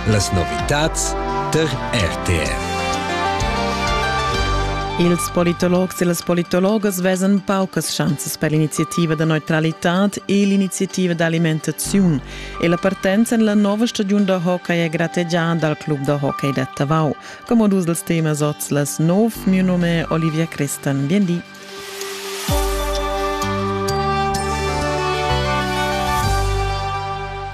Las novitads tar RTV. Ils politologs e las politologas vesan paucas schanzas per l'iniziativa da neutralitad e l'iniziativa d'alimentaziun e la partenza en la nova stagiun da hockey è grategiada dal club da hockey da Tavau. Come dus dels temas oz las nov, mio nome è Olivia Crestan. Bien di.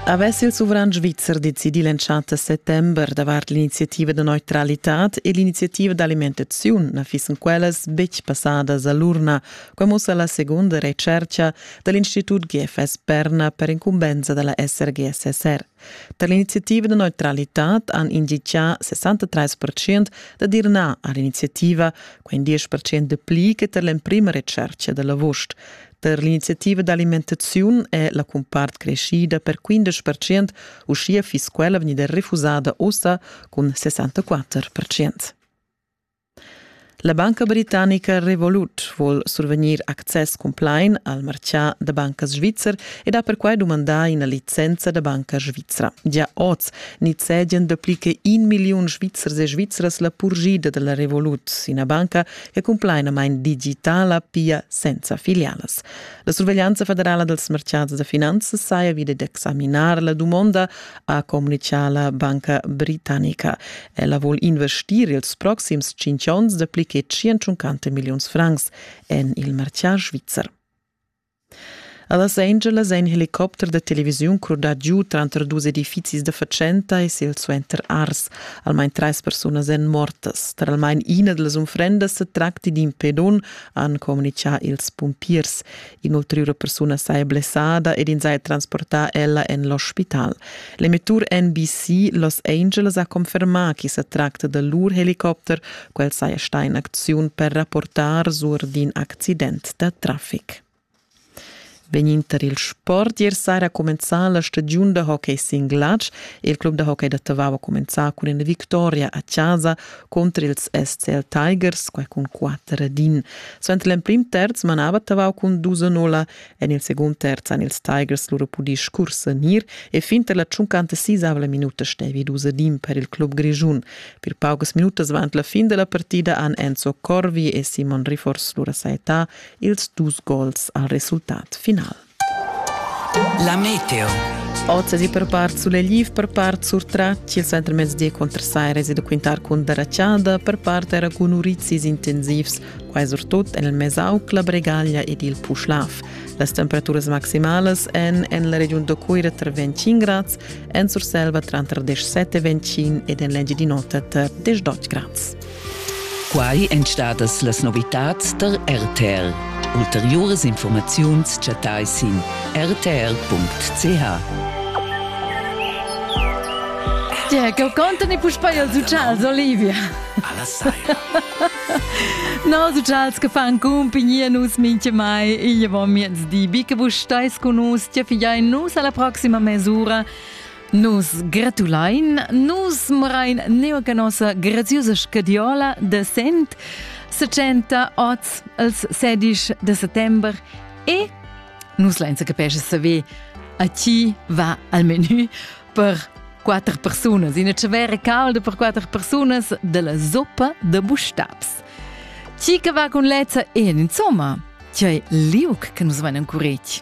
Havess il suvran svizzer decidì l'entschatta settember davart l'iniziativa da neutralitad e l'iniziativa d'alimentaziun na fissen quellas betg passadas a l'urna, qua mussa la segunda retschertga da l'Institut GFS Berna per incumbensa da la SRGSSR. Per l'iniziativa da neutralitad han inditgà 63 percent dad ir nà a l'iniziativa, quin 10 percent de pli che tar l'emprima retschercha da l'avust. Per l'iniziativa d'alimentaziun è la cumpart creschida per 15 percent, uschia fiss quella vegnida refusada ussa cun 64 percent. La banca britannica Revolut vul survegnir access cumplain al martgà da bancas svizzer ed ha perquai dumandà ina licenza da banca svizra. Gia oz nizzegian dapli che in milliun svizzers e svizras la purgida da la Revolut, ina banca che cumplainamain digitala pia senza filialas. La surveglianza federala dals martgads da finanzas saja vid d'examinar la dumonda, ha communicà la banca britannica. Ella vul investir ils proxims tschintg onns de pli che 150 milliuns francs en il martiar svizzer. A Los Angeles è in helicopter de televisiun crudà giu tranter dus edifizis de fatschenta e silsuenter ars. Almain treis persunas èn mortas. Tra almain ina delle unfrendas se tracti d'in pedun, han communicà ils pumpiers. In'ulteriura persuna saja blessada ed ins haja transportà ella en l'ospital. L'emettur NBC Los Angeles ha confermà ch'i sa tracta da lur helicopter, quel saja stà in acziun per rapportar sur d'in accident da traffic. Vegninter il sport ier saira cumenzà la stagiun da hockey sin glatsch. Il club da hockey da Tavau ha cumenzà cun ina victoria a chasa conter ils SCL Tigers, quai cun 4 din. Suenter l'emprim terz manava Tavau cun 2-0 en il secund terz han ils Tigers lura pudì scursanir e fin tar la 56 minuta stevi 2 din per il club grischun. Per paucas minutas avant la fin della partida han Enzo Corvi e Simon Rifors lura saettà ils dus gols al resultat final. La meteo. Oz è per part sulegliv, per part surtratg. Il centrmezdi contrasaires e da quintar cun darachada, per part era cun urizis intensivs, quai surtut en il Mesauc, la Bregaglia ed il Puschlav. Las temperaturas maximalas èn en la regiun da Cuira tra 25 grads, en Surselva tranter 17 e 25 ed en l'Engiadin'Ota tra 18 grads. Quai èn stadas las novitads tar RTL. Ulteriuras informaziuns chattai sin rtl.ch. Tge che contano i puspei els uccials, Olivia? Alla saira. Nos uccials che fan compagnia nus mincha mai igl avon miezdi. Bi che vus stais con nus, tge figliai nus alla proxima mesura. Nus gratulein, nus murain neu che nossa graziusa scadiola de Sent, 70 oz els 16 de settember e nus leinsa capesce saver a ti va al menu per quatter persunas, ina cevera calda per quatter persunas della zoppa de bustabs. Ti che va con lezza e insomma, ti hai liug che nus venem curec.